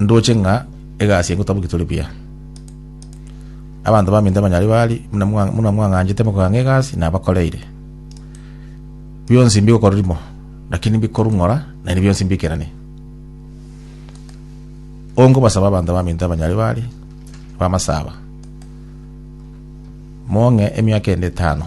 Ndoche ng'a egasi eye ngotaboki tore buya. Abanto baminto abanyaribari buna mwa- buna mwang'anchete mokogania egasi nabakoreire. Bionsi mbigokora rimo, lakini mbikorung'ora naende bionsi mbikeranie. Ongobasaba abanto baminto abanyaribari bamasaba, mong'e emiaka ende etano.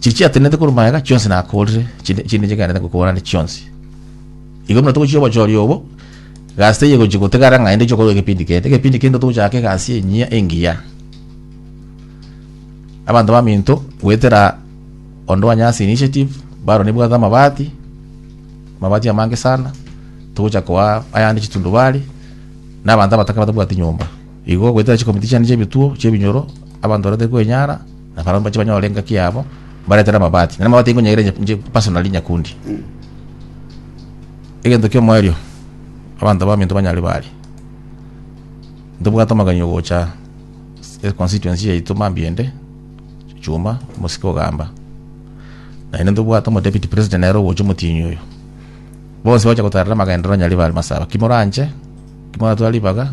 Chiria chiatenenete korwa magega chionsi nakorire, chinde chinde chigaenda kokorana chionsi. Igo buna togochia obochori obo, gasi teye gochi gotegara ng'a ende chokora egepindi kende. Egepindi kende togochaka egasi enyia engiya. Abanto baminto goetera onde wa Nyasi Initiative, baro nebwate amabati, amabati amange sana, togochaka koa ayande chitundubari, na abanto abataka batabwati nyomba. Igo goetera chikomiti chiane chiebituo, chiebinyoro, abanto barente koenyara, Na barabwo mbache banyore engaki yabo, mbaretere amabati. Na amabati nkonyaire inche- inche personally nyakundi. Egento ki'omoerio, abanto baminto banyare bari. Ntobwate amagani ogocha e constituency yaito mambia ende, Chuma, omosike ogamba. Naende ntobwate omo deputy president nere ogocha omotienyi oyo. Bonsi bagocha gotarera amagenderero nyaribari masaaba. Ki moranche, ki moratware ribaga,